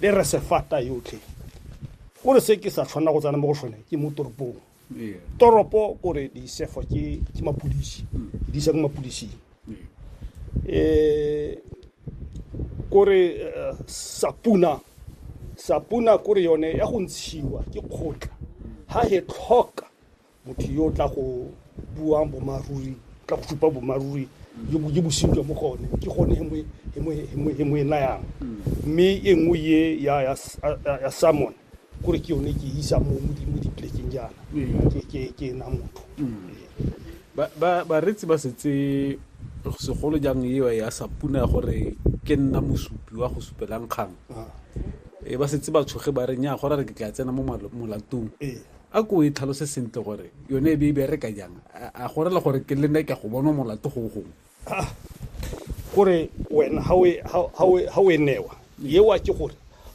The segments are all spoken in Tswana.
le re sefata yotlhe o re se ke sa tshwanela go tsena mo go sone ke mo toropong toropo kore di sefo ke ke mapodisi di isa ko mapodising eh kore eh, sapuna sapuna kore yone ya go ntshiwa ke kgotla ha he tlhoka Motho yo o tla go buang bomaruri, o tla go supa bomaruri jo bo seng jwa mo go one, ke gone he mo e nayang. Mme e nngwe ye ya sermon kore ke yone ke isa mo dipolekeng jaana ke e na motho. Bareetsi ba setse segolo jang eo ya sa puna ya gore ke nna mosupi wa go supelang kgang e ba setse ba tshoge ba re nya go ra re ke tla tsena mo molatong a ko e tlhalose sentle gore yone e be e bereka jang a gore le gore ke lene ka go bonwa molato go gongwe ah, kore wena ha o e newa ewa ke gore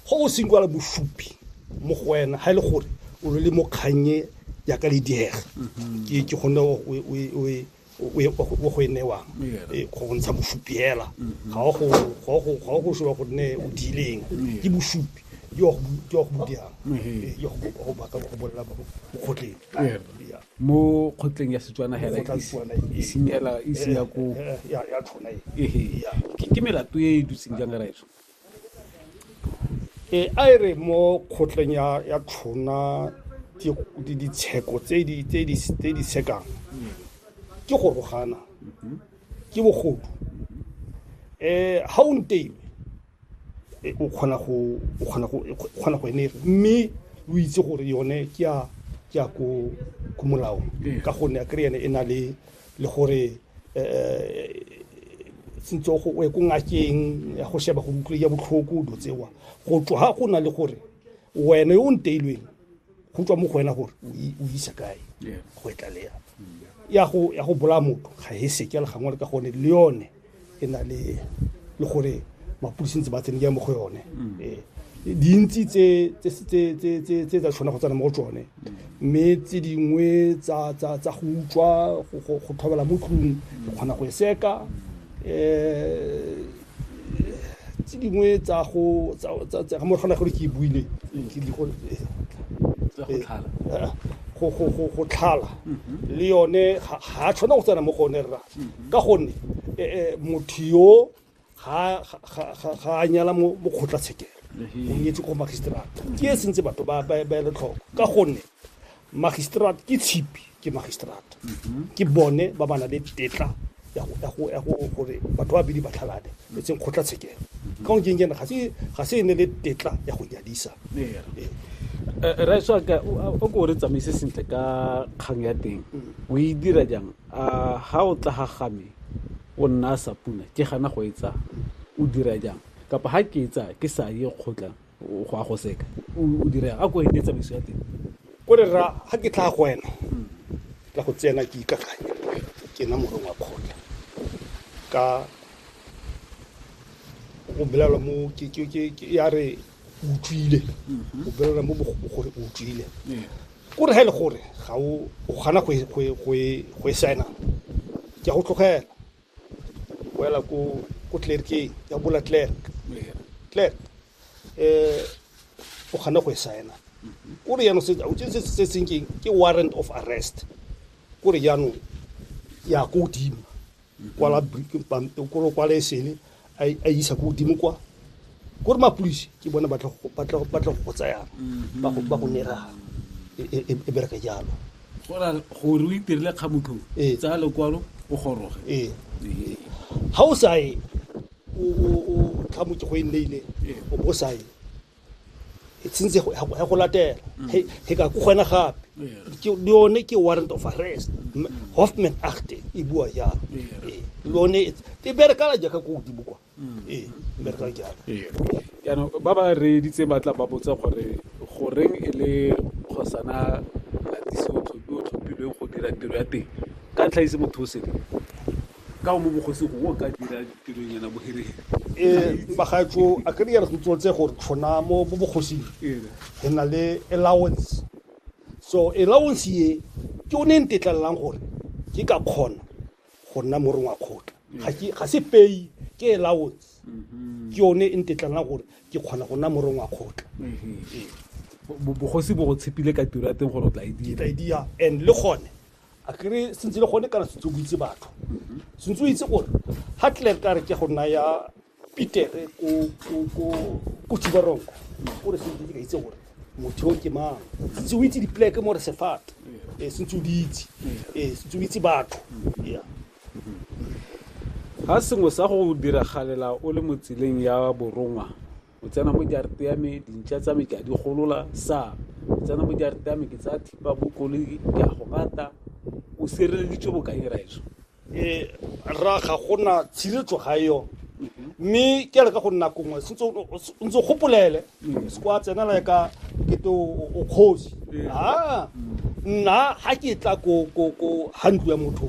go o senkwala bosupi mo go wena ha e le gore o lo le mo kgannye yaka le diega ke gone o go e newang e, go go ntsha bosupi hela ga o go shoba gonne o diileng ke bosupi yo go bodirang yo go baka go bolela mo kgotleng mo kgotleng ya setswana hela iseng ya ko ke melato e e dutseng jang raetso E, a e re mo kgotleng ya tshona ditsheko tse di sekang ke go rogana ke bogodu um ga o nteilwe e, o kgona go ene mme o itse gore yone ke ya ko molaong ka gonne a kry ene e na le le gore sentse o ye ko ngakeng ya go sheba go utlwe ya botlhoko do tsewa go tswa ga go na le gore wena yo o nteilweng go tswa mo go wena gore o isa kae go etlalea ya go bolaya motho ga e seke le gangwe le ka gone le yone e na le le gore mapodisi ntse ba tsene ke ya mo go yone mm. ee. dintsi tse tsa tshwana go tsena mo go tsone mme tse dingwe tsa go utswa go thobela mo tlong go kgona go e seka um tse dingwe tsa go kgona gore ke e buile go tlhala le yone ga a tshwana go tsena mo go one rra ka gonne e, e, motho yo ga a nyala mo kgotlatshekelo o nyetse ko magistrata ke e sentse batho ba ele tlhoko ka gonne magistrata ke tshipi ke magistrata ke bone ba ba na le tetla ya gore batho ba bedi ba tlhalane e tseng kgotlatshekelo ka gonke nkene ga se e ne le tetla ya go nyadisa Eh, eh, raeswaka o ko o re tsamaise sentle ka kgang ya teng mm. o e dira jang A ga o tla ga game o nna a sa puna ke gana go etsa o dira jang kapa ga ke etsa ke sa ye kgotla go a go seka o dira a ko ene tsamaiso ya teng kore ra ga ke tla go wena hmm. ka go tsena ke ikakanya ke nna morong wa kgotla ka go bolela mo ya re o utlwile o bolelela mo mogobong gore o utlwile ko re ga e le gore ga o o kgana go e- go e- go e- go e signa ke a go tlogela o ela ko ko clerkeng ke a bola clerk clerk eh o kgana go e signa o re jaanong se- o tse- se se senkeng ke warrant of arrest ko re jaanong ya ko godimo kwala kolo kwala e sele a isa ko godimo kwa ko re mapodisi ke bone ba tla go go tsayang mhm. ba go nera e, e, e, e bereke jalo gore o itirele kgamotho tsaya lekwalo o goroge ee ga o sa ye o tlhamotse go e nneile o bo sa ye since ya go latela he ka ko gona gape le yone ke warrant of arrest hoffman achte e bua jalo le yone e berekala jaaka ko godimo kwa ee e berekala jalo jaanong ba ba reeditse ba tla ba botsa gore goreng e le kgosana latise o tlhophilweng go dira tiro ya teng ka ntlha ise motho o sele Ka o mo bogosi go o ka dira tironyana bohereng. E bagaetsho a ka dira go tsotse gore tshona mo mo bogosing re na le allowance so allowance ye ke o ne ntetlelelang gore ke ka kgona go nna mo rongwa kgotla ga ke ga se pay ke allowance ke yone e ntetlelelang gore ke kgona go nna mo rongwa kgotla Bo- bogosi bo go tshepile ka tiro ya teng gore o tla e dira tla e dia and le gone a kry sentse le gone kana sentse o itse batho sentse o itse gore ga clerk a re ke go nna ya pitere ko tubaronko o re sentse ke ka itse gore motho o ke mang sentse o itse dipleke mo re sefate ee sentse o di itse ee sentse o itse batho ya ga sengwe sa go diragalela o le mo tseleng ya borongwa o tsena mo jarete ya me dintšha tsa me ke a di golola sa o tsena mo jarete ya me ke tsaya thipa bo koloi ke a go ngata o sireleditswe bokae raeso um ra ga gona tshireletso ga yo mme ke re ka go nna kongwe sentse o ntse gopolele se kwa tsenela ka kete o kgosi a nna ga ke tla ko ga ntlo ya motho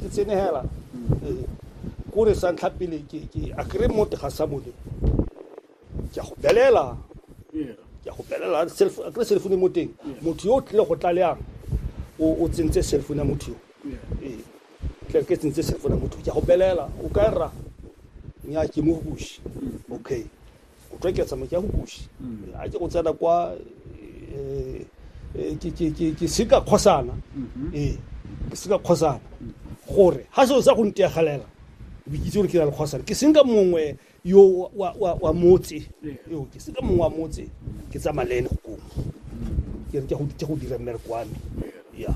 ke tsene hela kore sa ntlha pele ke ke a kry mo tega sa bone ke a go belela ke a go belela a kry cell phone mo teng motho yo o tlile go tla le yang o tsentse cell phone ya motho yo ee tle ke tsentse cell phone ya motho ke a go belela o ka rra nya ke mo bush okay O tlo eketsa moke ya go kusi. A ke go tsena kwa ke seka kgosana. Ee, ke seka kgosana. Gore ha seo sa go ntegelela o ikitse gore ke na le kgosana. Ke senka mongwe yo wa motse. Yo ke senka mongwe wa motse ke tsamaya le ene go kongwe. Ke re ke go dira mmereko wa me. Yeah.